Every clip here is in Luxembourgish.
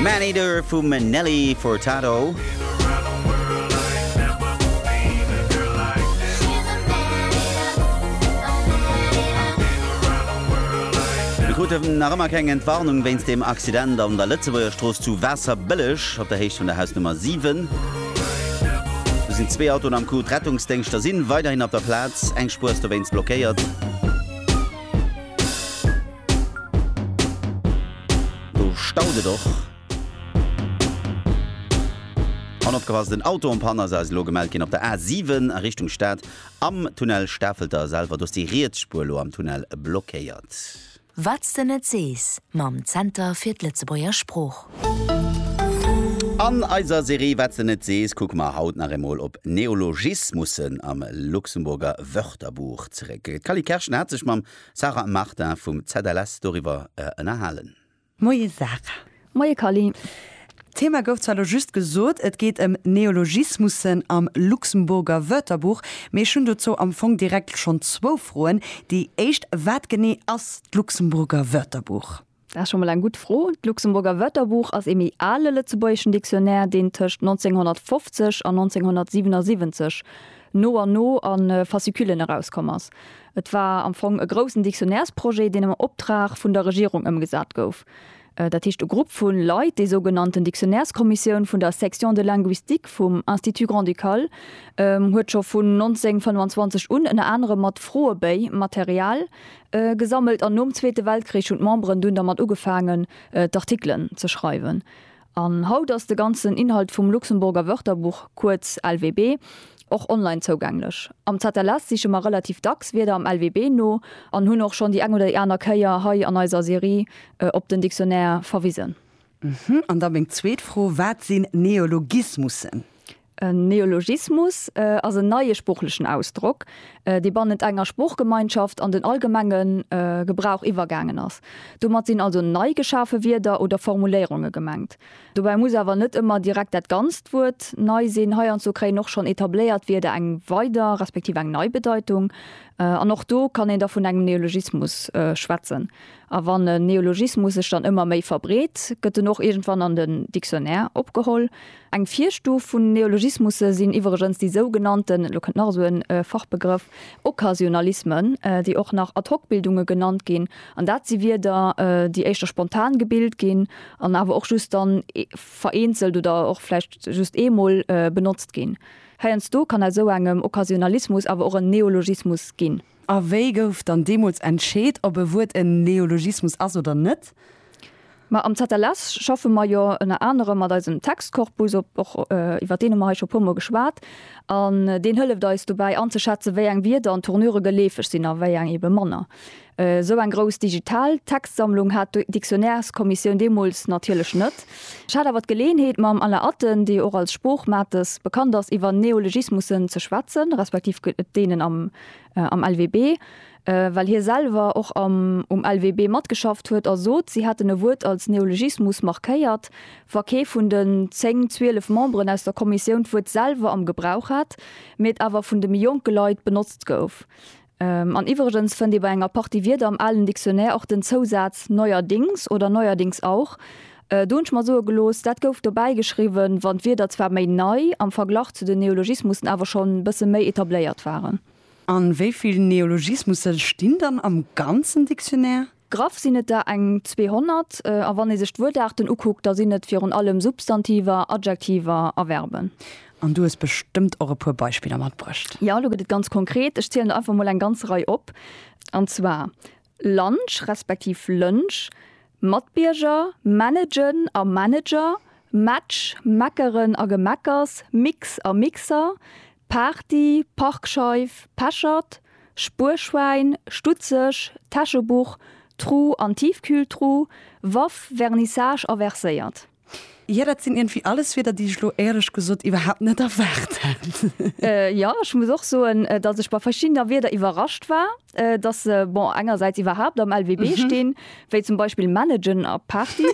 Maneater vum Nelly Furtado. Mir kruten nach ëmmer keng Entwarnung wéinst dem Accident an der Lëtzebuerger Strooss zu Waasserbëlleg op der Héicht vun der Hausnummer 7. Do sinn zwee Autoen am Coup. D'Rettungsdéngschter si weiderhin op der Plaz. Eng Spuer ass dowéinst blockéiert. Do staut et och. An opgepasst, en Auto am Panne ass eis elo gemellt ginn op der A7 a Richtung Stad am Tunnel Stafelter selwer. Do ass déi riets Spuer elo am Tunnel blockéiert. Wat's de net sees mam Zenter fir d'Lëtzebuerger Sprooch. An eiser Serie Wat's de net sees kucke mer haut nach eemol op Neologismussen am Luxemburger Wörterbuch zeréck. D'Cally Kerschen hat sech mam. Sarah a Martin vum ZLS doriwwer ënnerhalen. Moie Sarah. Moie Carline. D'Thema gouf zwar elo just gesot, et geet ëm Neologismussen am Luxemburger Wörterbuch, mee ech hunn dozou am Fong direkt schonn zwou Froen. Déi éischt, Wat genee ass d'Luxemburger Wörterbuch? Dat ass scho mol eng gutt Fro. D'Luxemburger Wörterbuch ass ee méi ale lëtzebuergeschen Dictionnaire, deen tëscht 1950 an 1977 no an no a Fasciculen erauskomm ass. Et war am Fong e groussen Dictionnairesprojet, deen am Optrag vun der Regierung ëmgesat gouf. Dat heescht, e Grupp vu Leit, déi sougenannten Dictionnaireskommissioun vun der Section de linguistique vum Institut grand-ducal, huet scho vun 1925 un ënner anerem mat Froebéi, Material, Gesammelt an nom Zweete Weltkrich hunn d'Memberen dunn dermat ugefaangen, d'Artikelen ze schreiwen. An haut ass de ganzen Inhalt vum Luxemburger Wörterbuch, kuerz LWB, och online zougänglech. Am ZLS siche mer relativ dacks Wierder am LWB no an hunn och schonn déi eng oder déi aner Kéier hei an eiser Serie op den Dictionnaire verwisen. An da meng zweet Fro, Wat sinn Neologismussen? En Neologismus ass en neie sproochlechen Ausdrock, dee bannent enger Sproochgemeinschaft an den allgemenge Gebrauch iwwergaangen ass. Domat sinn also nei geschafe Wierder oder Formuléierunge gemengt. Dobäi muss awer net ëmmer direkt dat ganzt Wuert nei sinn. Heiandsdo kréien och schonn etabléiert Wierder eng weider respektiv eng nei Bedeitung. An och do kann een da vun engem Neologismus schwätzen. A wann en Neologismus sech dann ëmmer méi verbreet, gëtt en och iergendwann an den Dictionnaire opgeholl. Eng Virstuf vun Neologismusse sinn iwwregens déi sougenannten, elo kënnt nach esou en Fachbegrëff, Occasionalismen, déi och nach Ad-hoc-Bildunge genannt ginn. An dat si Wierder, déi éischter spontan gebilt ginn an awer och just dann vereenzelt oder och vläicht just eemol benotzt ginn. Heiansdo kann aus esou engem Occasionalismus awer och en Neologismus ginn. A wéi gouf dann deemools entscheet, ob e Wuert en Neologismus ass oder net? Ma am ZLS schaffe mer jo ënner anerem mat eisem Textkorpus, och iwwer deen hu mer hei scho e puermol geschwat, an deen hëlleft eis dobäi anzeschätzen, wéi eng Wierder an Tournure geleefeg sinn a wéi eng eebe manner. Esou eng grouss digital Textsammlung hat d'Dictionnaireskommissioun deemools natierlech net. Ech hat awer d'Geleeënheet, mam Alain Atten, dee och als Sproochmates bekannt ass, iwwer Neologismussen ze schwätzen, respektiv deenen am. am LWB, well hie selwer och am um LWB matgeschafft huet a sot, si hätten e Wuert als Neologismus markéiert, wa kee vun den zéng, zwielef Memberen aus der Kommissioun d'Wuert selwer am Gebrauch hätt, mee et awer vun de méi jonke Leit benotzt gouf. An iwwregens fënnt ee bei enger Partie Wierder am alen Dictionnaire och den Zousaz neuerdings oder neuerdings auch. Do hunn ech mer soe gelooss, dat gouf dobäi geschriwwen, wann d'Wierder zwar méi nei, am Verglach zu den Neologismussen awer schonn e bësse méi etabléiert waren. A wéi vill Neologismusse stinn dann am ganzen Dictionnaire? Graff sinn et der eng 200, a wann ee sech d'Wuertaarten ukuckt, da sinn et virun allem Substantiver, Adjektiver a Verben. An du hues bestëmmt och e puer Beispiller matbruecht? Jo, elo gëtt et ganz konkret. Ech zielen der einfach mol eng ganz Rei op. An zwar, Lunch respektiv Lënsch, Matbierger, Managen a Manager, Match, Meckeren a Gemeckers, Mix a Mixer, Party, Parkscheif, Pechert, Spuerschwäin, Stutzeg, Täschebuch, Tru an Tiefkühltru, Waff, Vernissage a Verséiert. Jo, dat sinn iergendwéi alles Wierder, déi ech elo, éierlech gesot, iwwerhaapt net erwaart hat. Jo, ech muss och soen, datt ech bei verschiddener Wierder iwwerrascht war, datt se, bon, engersäits iwwerhaapt am LWB stinn, wéi zum Beispill managen a Party.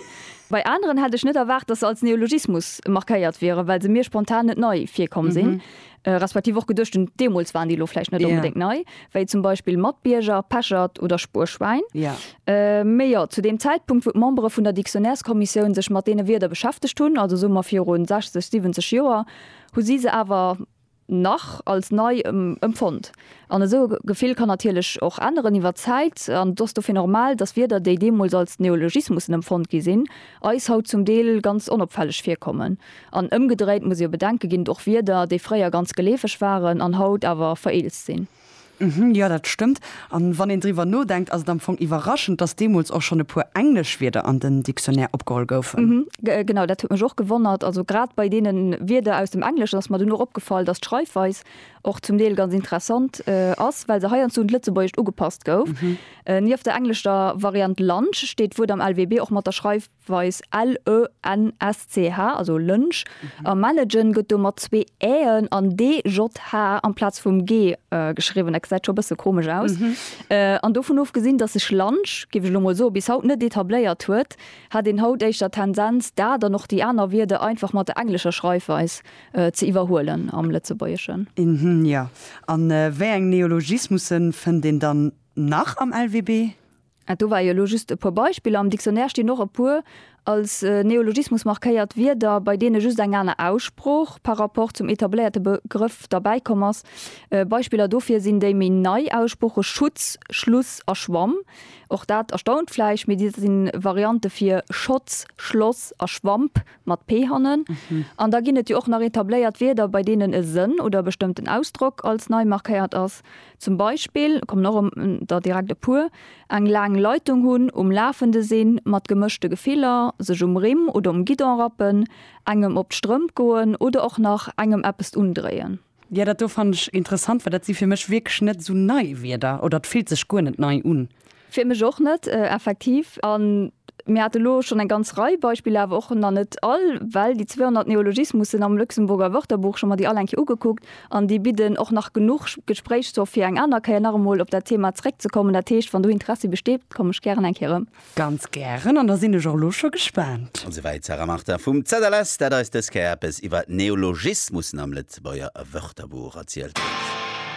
Bei aneren hätt ech net erwaart, datt se als Neologismus markéiert wieren, well se mir spontan net nei virkomm sinn. Respektiv och geduecht hunn, deemools waren déi elo vläicht net onbedéngt nei, wéi zum Beispill Matbierger, Pechert oder Spuerschwäin. Mee jo, zu deem Zäitpunkt, wou d'Membere vun der Dictionnaireskommissioun sech mat deene Wierder beschäftegt hunn, also soe mer viru 60, 70 Joer, hu si se awer nach als nei empfonnt. An esou e Gefill kann natierlech och änneren iwwer d'Zäit. An et ass dofir normal, datt Wierder, déi deemools als Neologismussen empfonnt gi sinn, eis haut zum Deel ganz onopfälleg virkommen. An ëmgedréit muss ee bedenke ginn, och Wierder, déi fréier ganz geleefeg waren an haut awer vereelzt sinn. Hm, jo, dat stëmmt. A wann een driwwer nodenkt, ass et am Fong iwwerraschend, dass deemools och schonn e puer englesch Wierder an den Dictionnaire opgeholl goufen. Hm, genau, dat huet mech och gewonnert. Also grad bei deene Wierder aus dem Engleschen ass mer dunn och opgefall, dass d'Schreifweis och zum Deel ganz interessant ass, well se heiansdo un d'Lëtzebuergescht ugepasst gouf. Nieft der englescher Variant lunch steet d'Wuert am LWB och mat der Schreif. weis LENSCH, also Lënsch, a Managen gëtt do mat zwee Äen an DJH amplaz vum G geschriwwen. Dat gesäit scho e bësse komesch aus. An dovun ofgesinn, datt sech Lunch, géif ech elo mol soen, bis haut net etabléiert huet, hätt een haut éischter d'Tendenz, dat an och déi aner Wierder einfach mat der englescher Schreifweis ze iwwerhuelen am Lëtzebuergeschen. Mhmm, jo. A wéi eng Neologismusse fënnt een dann nach am LWB? Ah, do war jo elo just e puer Beispiller. Am Dictionnaire stinn och e puer als Neologismus markéiert Wierder, bei deene just eng aner Aussprooch par rapport zum etabléierte Begrëff derbäi komm ass. Beispiller dofir sinn déi méi nei Aussprooche Schutz, Schluss a Schwamm. Och dat erstaunt vläicht, mee dat si Variante fir Schotz, Schloss a Schwamp, mat p hannen. An da ginn et jo och nach etabléiert Wierder, bei deenen e Sënn oder e bestëmmten Ausdrock als nei markéiert ass. Zum Beispill, kommen och em der direkt e puer, eng laang Leitung hunn, um Lafende sinn, mat gemëschte Gefiller, sech um Rimm oder um Guidon rappen, engem op d'Strëmp goen oder och nach engem eppest undréien. Jo, dat do fannen ech interessant, well dat si fir mech wierklech net esou nei Wierder, oder et fillt sech guer net nei un. Fir mech och net, effektiv. A mir hate lo schonn eng ganz Rei Beispiller, awer och nach net all, well déi 200 Neologismussen am Luxemburger Wörterbuch, ech hu mer déi all eng Kéier ugekuckt an déi bidden och nach genuch Gespréichsstoff fir eng aner Kéier nach emol op dat Thema zréckzekommen. Dat heescht, wann do Interessi besteet, komme ech gären eng Kéier erëm. Ganz gären, an da sinn ech och lo scho gespaant. Esouwäit d'Sarah Martin vum ZLS, dat eis dës Kéier eppes iwwer Neologismussen am Lëtzebuerger Wörterbuch erzielt huet.